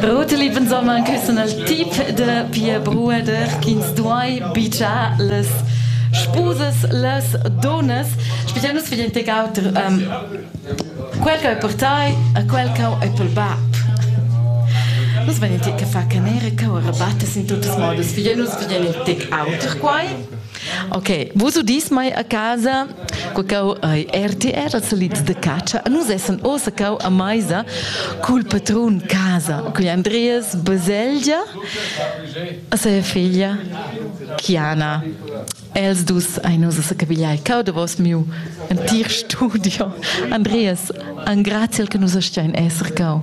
Roteli pensomma küssen al tip de pia brueder ch'ins duai bigiar las spusas las donas spezial nus vegin tegau um, quel che è per tai a quel che è per bab Nus vegin ti che fa canera che rabatta sin tuttas modas. Vegin nus vegin ti auter quai? Ok, vos udis mai a casa quacau ai RTR, als solids de caccia. Nus essan ossa cau a maisa cul patrun casa, cui Andreas Baselgia, a sa figlia Chiana. Els dus ein nus a capigliai cau de vos miu antir studio. Andreas, an graziel che nus stein esser cau.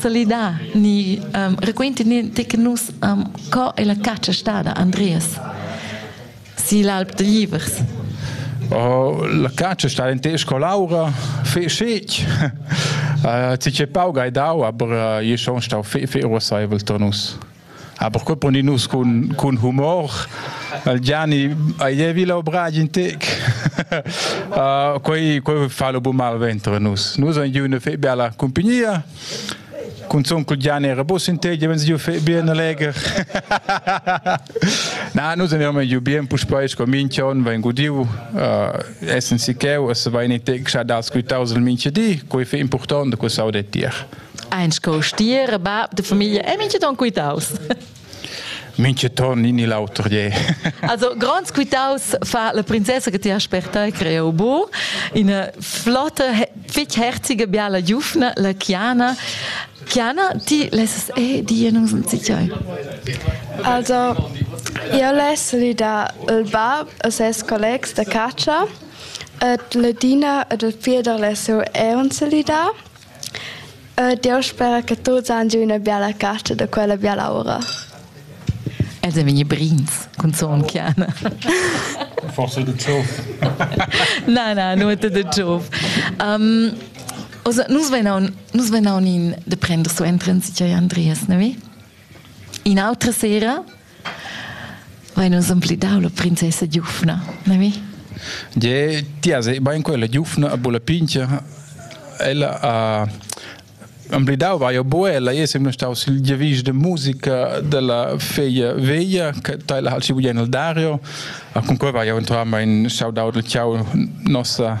solidar ni um, raquinti ni te che nus um, co è la caccia stada Andreas si l'alp de Livers Oh, la caccia sta in tesco laura fe schec ci che pauga e dau aber je schon stau fe fe rosavel tonus Ah, perquei poni nus cun, cun humor. Il Gianni, aievi l'obra in tec. uh, quei, quei fa lo bu mal ventre nus. Nus ein giù una fe bella compagnia. Con onkel Gianni era bus in te, wenn sie fe bien leger. Na, nus andiamo giù bien, pus poi con minchion ven gudiu, uh, essen si cheu, es va in tec xa das quitaus il minchi di, quei fe importante, quei sau de tier. Eins co stier e bab de famiglia e minche ton quitaus. Minche ton ni l'auter je. also gronds quitaus fa la princessa che ti ha spertai creo bu in flotte fich herzige biala giufna la Chiana Chiana ti lesses eh die non sind sicher Also io less lidar il bab e ses collegs da caccia et la Dina ed il fier da lesseu eon se lidar E Dieu spera che tuts han giu ina biala carta da quella bial'aura. Els ein vegni brins cun Sontgiana. Forse de Zoff. na, na, nur de Zoff. Um, also, nus venaun, nus venaun in de prender so entren sicher Andreas, ne? In autra sera Vai, nus han plidau la princessa giufna, na mi? Ge, ti has bain quella giufna a bula pincha. Ella ha amblidau vai a buella, io sem staus il giavisch de musica della feglia veglia, che teila hal si bugen al Dario, a con quei vai eventualmente in shout out al ciao nossa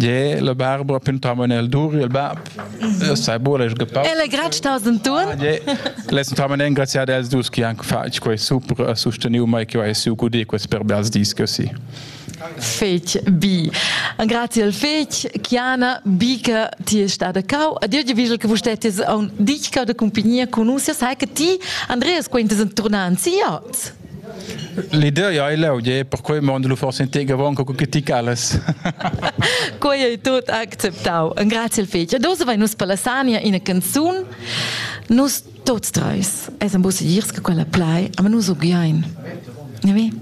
Je la Barbara pintava nel dur il bab. Sai bole ich gepapa. Ele grad sta sen tun. Je les entava en graziad els dus che anche fatg quei super a susteniu mai che vai su gudi quest per bels dis così. Fetch bi. An grazie al fetch Chiana Bica ti è stata cau a dir che visual che vustetti on dich cau de compagnia con us sai che ti Andreas quintes en tornanzi ots. L'idea ei leu, je, per quei mondo lu forse integavan co critic alles. Quei ei tut acceptau. Grazie il fetg. Adesso vai nus per la Sania ina canzun. Nus tots treis, es am bus girs che quella plai, aber nus so gioin. Ne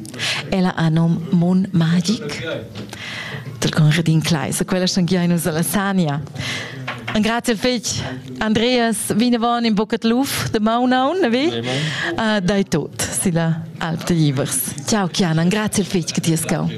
Ella ha nom Mon Magic. Del con Redin Kleis, quella schon gioin nus alla Sania. Grazie il fetg. Andreas, vinavon in bucet luf de maunaun, vi? Uh, dai tot, silla Alp de Givers. Ciao, Chianan, grazie il fetg che ti has cau.